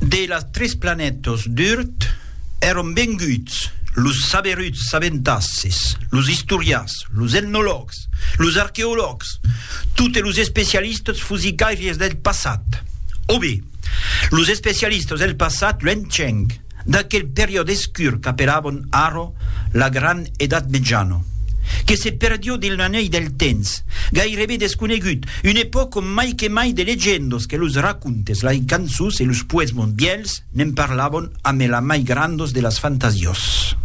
De las tres planètas d'Urt èran venguts los saberuts sabentasses, los istorians, los etnològs, los arqueològs, totes los especialistas fusicairies del passat. O be, los especialistas del passat luenhenc. d'aquel periòde escur qu'apelabon arro la Gran Edat Mejana, que se perdió dins l'anèl del temps, gairebe desconegut, una epòca ont mai que mai de legendas que los racontes, lai cançons e los poesmons vièlhs ne'n parlabon amé la mai grandas de las fantasias.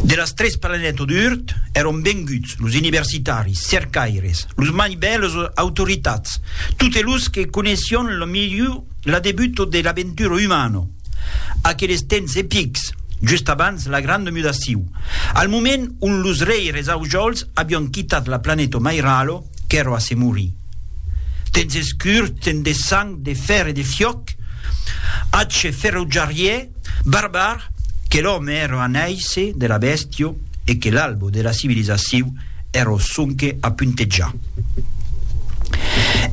De las tres planètas d'Urt èron venguts los universitaris, cercaires, los mai bèls autoritats, totes los que coneissión la milhor L'adebuto de l'aventura umana, aqueles temps epics, just abans la granda mudaciu, al moment ont los reires Aujols avián quitat la planeta Mairalo, qu'èra a se morir. Temps escurs, temps de sang, de fèr e de fiòc, atge ferotjarièr, barbar, que l'òme èra a nàisser de la bèstia, e que l'albo de la civilizaciu ero sonque a puntejar.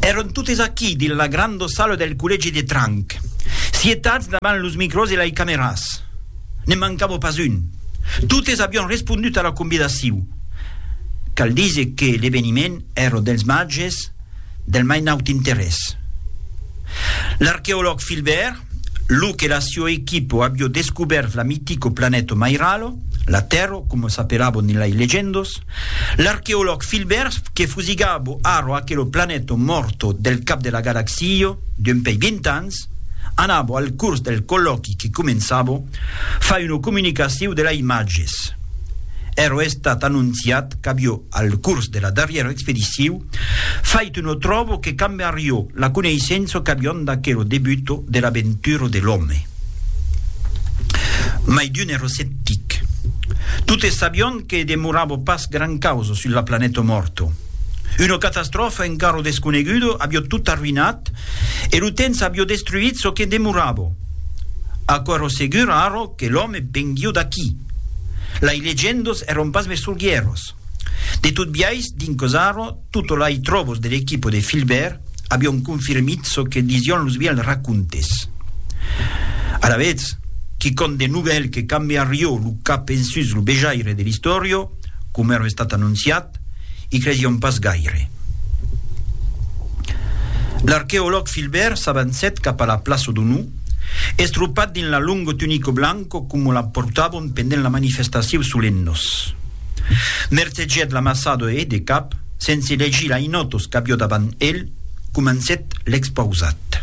Eron totes aquí dins la granda sala del collègi de Tranc, sietats davant los micròs e lai cameras. Ne mancava pas un. Totes avián respondut a la convidaciu. Cal díser que l'eveniment èra dels màges del mai naut interès. L'arqueològ Filbèrt Lo que la sio equipo avió descubèrt la mitico planèto Mairalo, la Tèrro, coma s'apelabo ne lai legendos, l'arqueològ Filbert que fusigabo arro aquelo planèto mòrto del cap de la galaxio d'un pei vint ans, anabo al curs del collòqui que començabo, far una comunicaciu de la imatges. Ero estat anonciat qu'avió al curs de la darrièra expediciu, Fait no tròbo que cambe arriò la coneissença qu'avion d'aquero debuto de l'aventura de l'òme. Mai d'un èra sceptic. Totes sabion que demorava pas gran causa sus la planeta mòrta. Una catastròfa encara desconeguda avió tot arruïnat e lo temps avió destruït çò que demorava. Aquò èra segur ara que l'òme venguió d'aquí. Lai legendas èran pas mai sorgièras. De tot biais, dins Cosaro, toto lai tròbos de l'equipo de Filbèrt avion confirmit çò que disión los vièlhs racontes. Alavetz, quicòm de novèl que cambiarió lo cap ensus lo vejaire de l'istòrio, coma èra estat anonciat, i cresión pas gaire. L'arqueològ Filbèrt s'avancèt cap a la plaço Donou, estropat dins la longo tunico blanco coma la portavon pendent la manifestatiou solennos. Mercegèt l'amasador e, de cap, sense legir la inotos qu'avió davant el, comencèt l'expausat.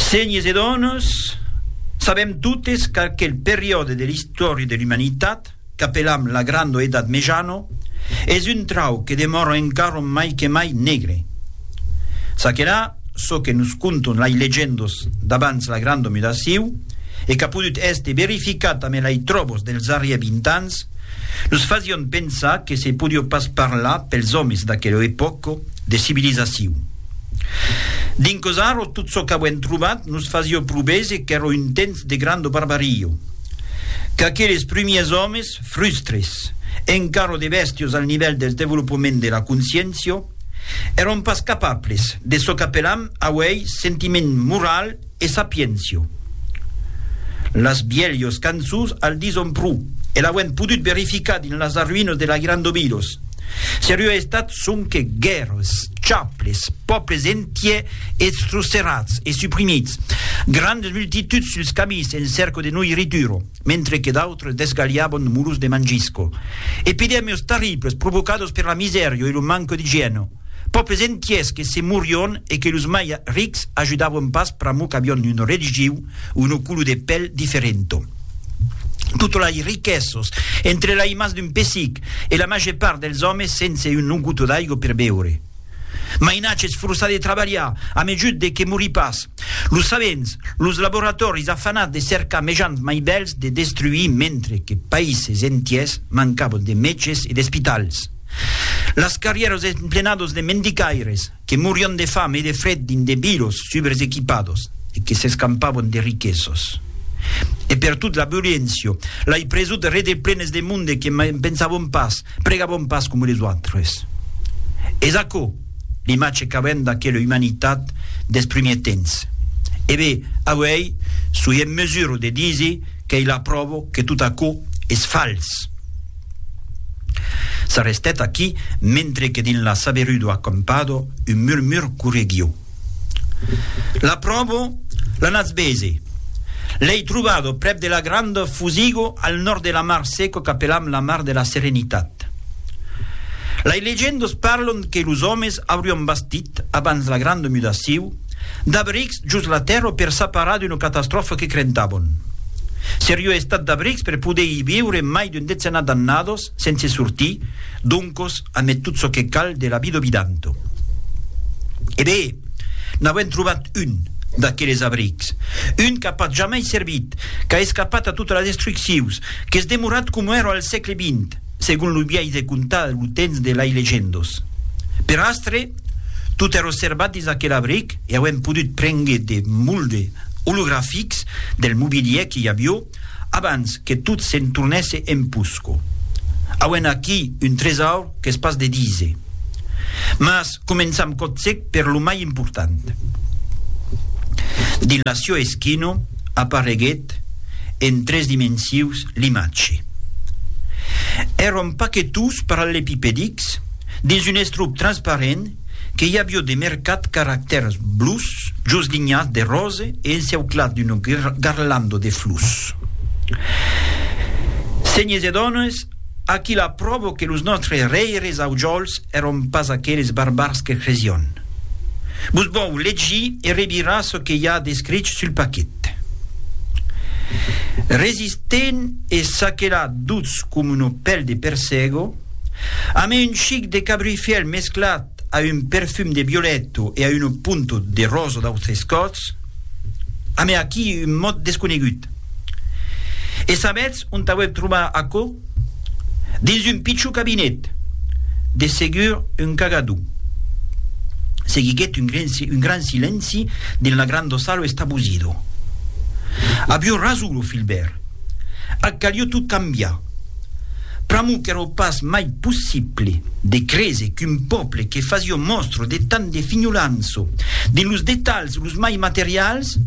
Senhes e dones, sabèm totes qu'aquel periòde de l'istòria de l'umanitat, qu'apelam la granda Edat Mejana, es un trauc que demòra encara mai que mai negre. Ça que la. çò que nos conton lai legendos d'abans la granda mudaciu e qu'a podut èster verificat amé lai tròbos dels arrier 20 ans, nos fasión pensar que se podió pas parlar pels òmes d'aquela epòca de civilizaciu. Dinquós arro tot çò qu'avuem trobat nos fasió provese qu'èra un temps de granda barbaria, qu'aqueles prumiers òmes, frustres, encara de bèstios al nivèl del devolopament de la consciéncia, Èron pas capables de çò qu'apelam auèi sentiment moral e sapiéncia. Las bielhos cançons al dison pro, e l'auem podut verificar dins las arruïnas de la Gran Dobidos. Seriá estat sonque guèrres, chaples, pòbles entièr estrocerats e suprimits, grandes multituds suls camins en cèrca de noiritura. mentre que d'autres desgalhavan muros de mangisco. Epidèmios terribles provocados per la misèria e lo manque d'igièna. Pòbles entièrs que se morion e que los mai rics ajudavan pas pr'amor qu'avion una religiu o una color de pèl diferenta. Totas las riquesas, entre las mans d'un pessic e la màger part dels òmes sense una gota d'aiga per beure. Mainatge es forçat de trabalhar a mejut de que morí pas. Los sabents, los laboratòris afanats de cercar mejans mai bèls de destruir mentre que païses entiers mancabon de mètges e d'espitals. Las carrièras emplenados de mendicaires que morion de fam e de fred dins de bilos subresequipados e que s'escampabon de riquesos. E pertot la violéncia, lai presut rede plenes de monde que mai pensabon pas Pregabon pas coma les autres. Es aquò l'imatge qu'avèm d'aquela umanitat dels primièrs temps. E be, auèi soi en mesura de díser qu'ei la pròva que tot aquò es fals. S'arrestèt aquí, mentre que dins la saberudor acampada un murmur correguiu. L'apròvo, l'anatz bese. L'ei trobado prèp de la granda Fusigo al nòrd de la mar seco qu'apelam la mar de la Serenitat. Lei legendas parlan que los òmes aurián bastit, abans la granda mudaciu, d'abrics jos la tèrra per s'aparar d'una catastròfa que crentavan. Seriá estat d'abrics per poder i viure mai d'un decenat d'annadas Sense sortir, doncos, amé tot çò que cal de la vida vidanto. E be! N'auem trobat un, d'aqueles abrics. Un qu'a pas jamai servit, qu'a escapat a totes las destruccions, qu'es demorat coma èra al sègle vint, segon lo biais de contar lo temps de lai legendos. Per astre, tot èra servat dins aquel abric e auem podut prengre de molde olografics del mobilièr que i avió, Abans que tot se'n tornèsse en Pusco. Auem aquí un tresaur qu'es pas de díser. Mas començam còtzec per lo mai important. Dins la Sio Eschino apareguèt en tres dimensius l'imatge. Èron paquetons parallepipedics dins un estruc transparent que i avió de mercat caractèrs blus jos linhas de rose e enceuclat d'una garlanda de flus. Senhes e dones, aquí la pròva que los nòstres rèires aujòls èron pas aqueles barbars que cresión. Vos vòu legir e revirar çò que i a d'escrich sul paquet. Resistent e saquelat dutz com una pèl de persègo, Amé un chic de cabruifièl mesclat a un perfum de violèto e a una punta de rosa d'autres còts, amé aquí un mot desconegut. E sabètz ont auèc trobar aquò? Dins un pichon cabinet, de segur un cagadon. Seguiguèt un gran silenci dins la granda sala estabosida. Avió rason lo filbèr, ac calió tot cambiar. Pr'amor qu'èro pas mai possible de créser qu'un pòble que fasió mòstra de tant de finholança dins los detalhs los mai materials,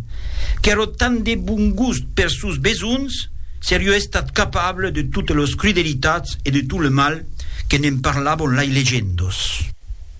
qu'èro tant de bon gust pers sòns besonhs, serió estat capable de totes los crudelitats e de tot le mal que ne'n parlavon lai legendos.